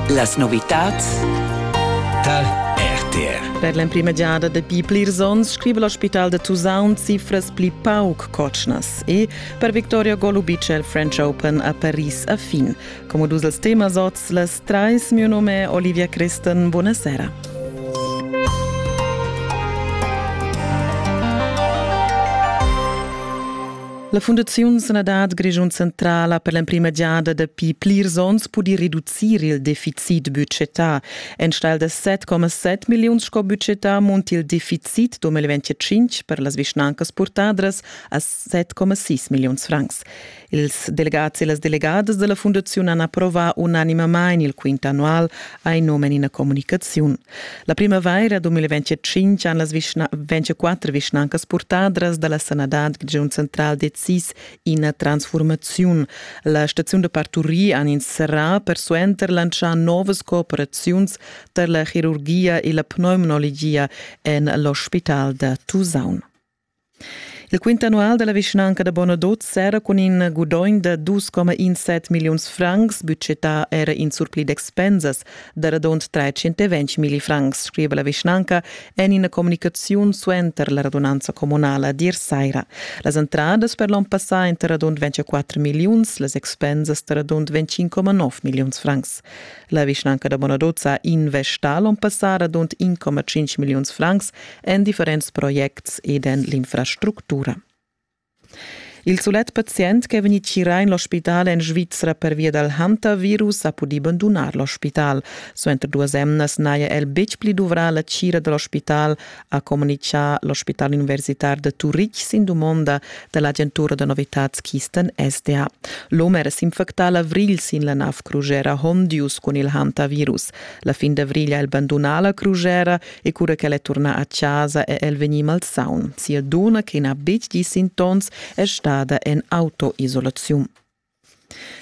Las novitads Tal RTR. Per l'emprima giada dapi plirs onns scriva l'ospital da Tusaun cifras pli pauc cotschnas e per Victoria Golubic è il French Open a Paris a fin. Come dus els temas oz, las trais, mio nome è Olivia Creston. Buonasera. La Fundaziun Sanadad Grischun Centrala per l'emprima giada dapi plirs onns pudi reducir il deficit budgetà. Enstagl da 7,7 milliun sco budgetà munt il deficit 2025 per las vischnancas purtadras a 7,6 milliuns francs. Ils delegats e las delegadas della Fundaziun han approvà unanimamain il quint annual, ha in nome in ina comunicaziun. La primavaira 2025 han las vischna 24 vischnancas purtadras da la sanadad Grischun central decis ina transfurmaziun. La staziun da parturir han inserrà persuenter lantschà novas cooperaziuns tar la chirurgia e la pneumologia en l'ospital da Tusaun. Il quint annual dalla vischnanca da Bonadot sera cun in gudogn da 2,17 milliuns francs, budgetà era in surpli d'expensas da radund 320 milli francs, scriva la vischnanca en ina communicaziun suenter la radunanza communala dir saira. Las entradas per l'onn passà ein da radund 24 milliuns, las expensas da radund 25,9 milliuns francs. La vischnanca da Bonadot ha investà l'onn passà radund 1,5 milliuns francs en differents projects ed en l'infrastructura. Il sulet pazient che è vegnì tgirà en l'ospital en Svizra pervia dal hantavirus ha pudì bandunar l'ospital. Suenter duas emnas n'haja el betg pli duvrà la tgira da l'ospital, ha communitgà l'ospital universitar de Turitg sin dumonda da l'agentura da novitads Kisten SDA. L'om era s'infectà l'avrigl sin la nav crugera Hondius cun il hantavirus. La fin d'avrigl ha el bandunà la crugera, e cura ch'el è turnà a chasa è el vegnì malsaun. Sia dunna, che n'ha betg gì sintoms, è stada en autoisolaziun.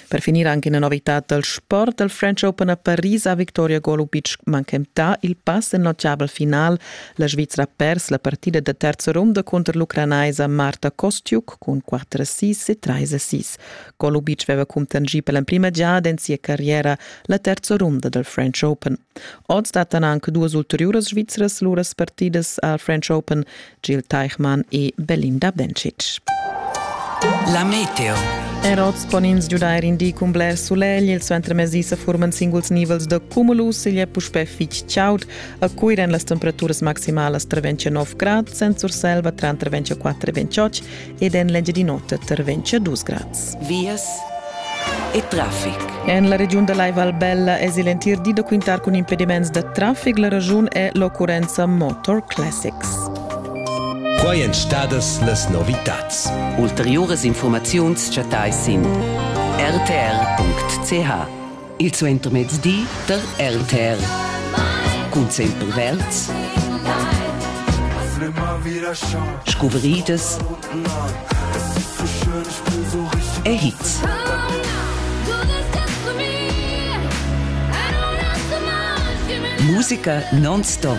Per finir anche una novità dal sport. Il French Open a Paris ha Victoria Golubic manchentà il pass in notgabel final. La Svizzera ha pers la partida da terza ronda cunter l'ucranaisa Marta Kostiuk cun 4-6 e 3-6. Golubic aveva cuntanschì per l'emprima giada en sia carriera la terza runda dal French Open. Oz dattan anche duas ulteriuras svizras luras partidas al French Open, Gil Teichmann e Belinda Bencic. La meteo. Er oz pon ins giudair in di cun bler sulegl. Il suentermezdi sa furman singuls nivels da cumulus. Igl è puspè fitg chaud. A Cuira èn las temperaturas maximalas tra 29 grad, senza Surselva tra 24 e 28 ed en l'Engiadin'Ota terventscha dus grads. Vias e traffic. En la regiun da Lai Val Bella es il entir di da quintar cun impediments da traffic. La ragiun è l'occurrenza Motor Classics. Quai èn stadas las novitads. Ulteriuras informaziuns chattais sin rtr.ch. Il suentermezdi der RTR cun sempel verds scuvridas e hits. Musica non-stop.